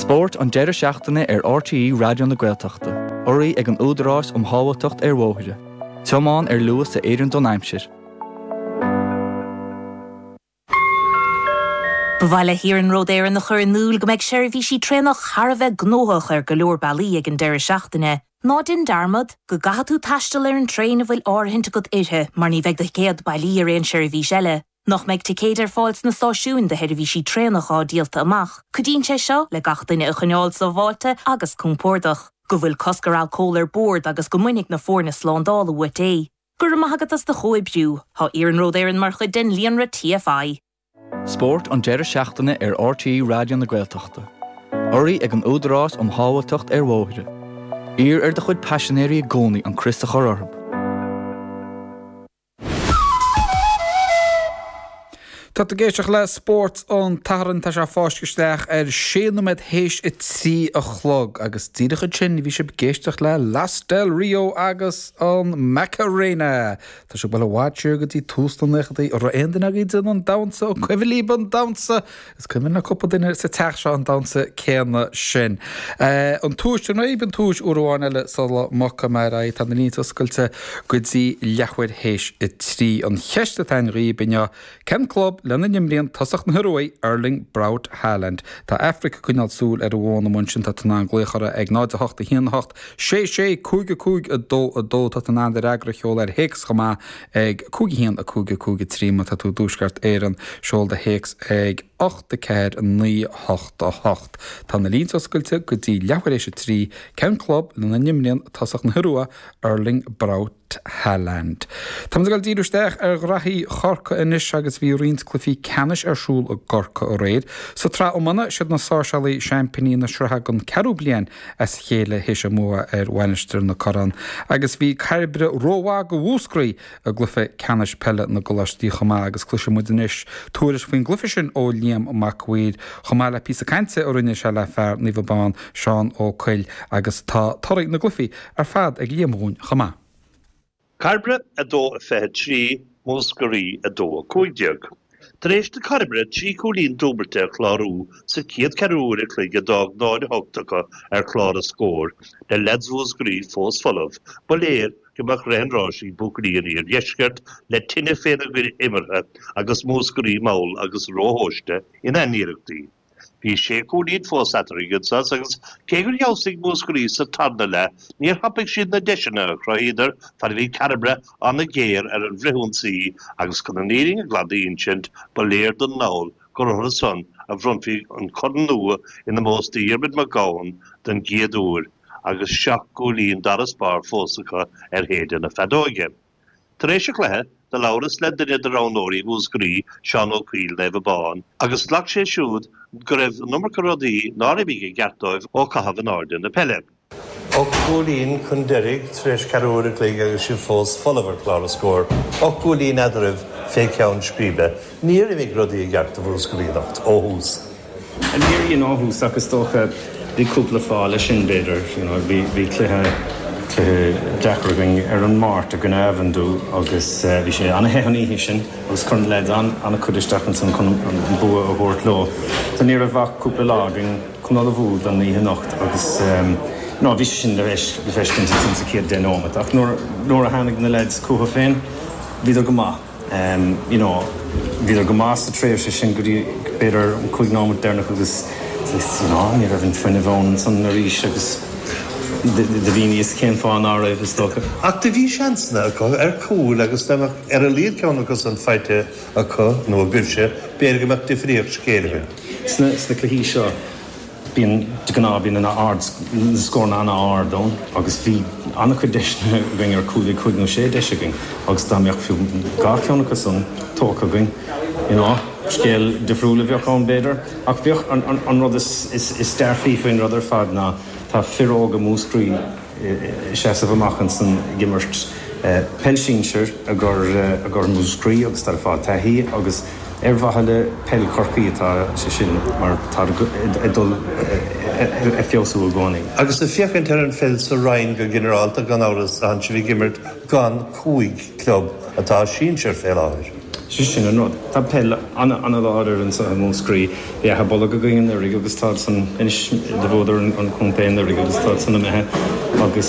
Spórt an deireadh seachtaine ar RTÉ Raidió na Gaeltachta. Urraithe ag an Údarás um Shábháilteacht ar Bhóithre. Tiomáin ar luas a oireann don aimsir. Ba mhaith le hIarnród Éireann a chur in iúl go mbeidh seirbhísí traenach thar a bheith gnóthach ar go leor bealaí ag an deireadh seachtaine. Ná déan dearmad go gcaithfidh tú taisteal ar an traein a bhfuil áirithint agat uirthi mar ní bheidh do thicéad bailí ar aon seirbhís eile. nach mbeidh ticéid ar fáil sna stáisiúin do sheirbhísí traenach atá díolta amach, cuidíonn sé seo le gach duine a choinneáil sábháilte agus compordach. go bhfuil cosc ar alcól ar bord agus go mbainfidh na foirne slándála uait é. Go raibh maith agat as do chomhoibriú. Tá Iarnród Éireann mar chuid den líonra TFI. Spórt an deireadh seachtaine ar RTÉ Raidió na Gaeltachta. Urraithe ag an Údarás um Shábháilteacht ar Bhóithre. Iarr ar do chuid paisinéirí i gcónaí an crios a chur orthu. Tá tú ag éisteacht le Spórt an tSathairn. Tá sé ag fáisceadh isteach ar sé nóiméad théis a trí a chlog agus díreach ansin bhí sibh ag éisteacht le Los Del Rio agus an Macarena. Tá sibh ag dul i bhfad siar go dtí tús na naochaidí. An raibh aon duine agaibh ag déanamh an damhsa, an cuimhin libh an damhsa? Is cuimhin le cúpla duine sa teach seo an damhsa céanna sin. An tomhais, an raibh an tomhais uair amháin eile sula mbogfaidh mé ar aghaidh? Tá na línte oscailte go dtí leathuair théis a trí. An cheist atá againn dhaoibh inniu, cén club lena n-imríonn tosach na hIoruaidh, Erling Braut Haaland? Tá Aifric ag coinneáil súil ar an bhfón amuigh ansin, tá tú in ann glaoch uirthi ag 0, 8, 1, 8, 6, 6, 5, 5, 2, 2. Tá tú in ann do fhreagra a sheoladh ar théacs chomh maith ag 5 1 5 5 3 Má tá tú i dTuaisceart Éireann, seol do théacs ag 8 4 9 8 8 Tá na línte oscailte go dtí leathuair théis a trí. Cén club lena n-imríonn tosach na hIorua, Erling Braut Haaland. Tá muid ag dul ag díriú isteach ar ghraithí Chorcaí anois agus bhí roinnt cluichí ceannais ar siúl i gCorcaigh aréir. Sa tsraith iomána, siad na Sáirséalaigh seaimpiní na sraithe don ceathrú bliain as a chéile théis a mbua ar Mhainistir na Corann agus bhí Cairbre rómhaith do Mhúscraí i gcluiche ceannais peile na gcoláistí chomh maith agus cloisfidh muid anois tuairisc faoin gcluiche sin ó Liam Mac a' Mhaoir chomh maith le píosa cainte a rinne sé le fear Naomh Abán, Seán Ó Cuill agus tá torthaí na gcluichí ar fad ag Liam dhúinn chomh maith. Cairbre 2 23, Múscraí 2 15. Tar éis do Chairbre trí chúilín dúbailte a chlárú sa chéad cheathrú uair an chloig a d'fhág 0 8 acu ar chlár na scór, le leaids Mhúscraí fós folamh, ba léir go mbeadh rith an ráis ag buachaillí an Iardheiscirt le tine féna gcuid imeartha agus Múscraí mall agus róthomhaiste ina n-iarrachtaí. Bhí sé chúilín fós eatarthu ag an sos agus cé gur fheabhsaigh Múscraí sa tarna leath, níor thapaigh siad na deiseanna a chruthaíodar fad a bhí Cairbre an-ghéar ar an bhfrithionsaí agus chun an fhírinne ghlan d'insint, ba léir don dall gur orthu san a bhronnfaí an corn nua in ómós do Dhiarmaid Mac Eoghain don gcéad uair agus seacht gcúilín d'fharasbarr fós acu ar shéideadh na feadóige. Tar éis an chluiche, do labhras le duine de roghnóirí Mhúscraí, Seán Ó Cuill, Naomh Abán, agus ghlac sé siúd go raibh an iomarca rudaí nár imigh i gceart dóibh ó caitheamh in airde na peile. Ocht gcúilín chun deiridh tar éis ceathrú uair an chloig agus sibh fós folamh ar chlár an scóir, ocht gcúilín eadraibh fé cheann scríbe. Níor imigh rudaí i gceart do Mhúscraí anocht ó thús. Níor éirigh linn ó thús ach is dócha bhí cúpla fáth leis sin b'fhéidir, you know, bhí, bhí cluiche, cluiche deacair againn ar an Máirt i gcoinne Avondhu agus bhí sé an-the an oíche sin agus chuir na leaids an-chuid isteach ansan chun an bua a thabhairt leo so ní raibh ach cúpla lá againn chun ullmhú don oíche anocht agus, you know, bhí sé sin le feiscint ansan sa chéad deich nóimeat ach nuair, nuair a tháinig na leaids chucu féin bhíodar go maith. you know bhíodar go maith sa tréimhse sin go dtí b'fhéidir an cúig nóimeat deireanach agus just you know ní raibh an fuinneamh ann ansan arís agus do bheadh a fhios cén fáth ná raibh is dócha. Ach do bhí seansanna acu ar chúil agus dá mbeadh ar a laghad ceann acu san faighte acu nó a gcuirfidís b'fhéidir go mbeadh difríocht sa scéal againn. Sna cluichí seo. Bíonn, de ghnáth, bíonn ana-ard, na scóranna an-ard ann agus bhí an-chuid deiseanna againn ar chúl, bhí cúig nó sé deis againn agus dá mbeadh fiú dhá cheann acu san tógtha againn, you know, scéal difriúil a bheadh ann b'fhéidir ach bheadh, an rud is dearfaí faoin rud ar fad ná tá fir óga Mhúscraí, seasamh amach ansan ag imirt peil sinsir i gcomhair Mhúscraí agus táid ag fáil taithí agus ar mhaithe le peil Chorcaí atá sé sin mar táid ag dul ag feabhsú i gcónaí. Agus ag féachaint ar an bpeil sa roinn go ginearálta, gan amhras, tánn sibh ag imirt Gan cúig club atá sinsir fé láthair. Sé sin an rud. Tá peil ana láidir anso i Múscraí. Bhí Achadh Bolg againn anuiridh agus táid san anois bhuadar an contae anuiridh agus táid san imithe agus.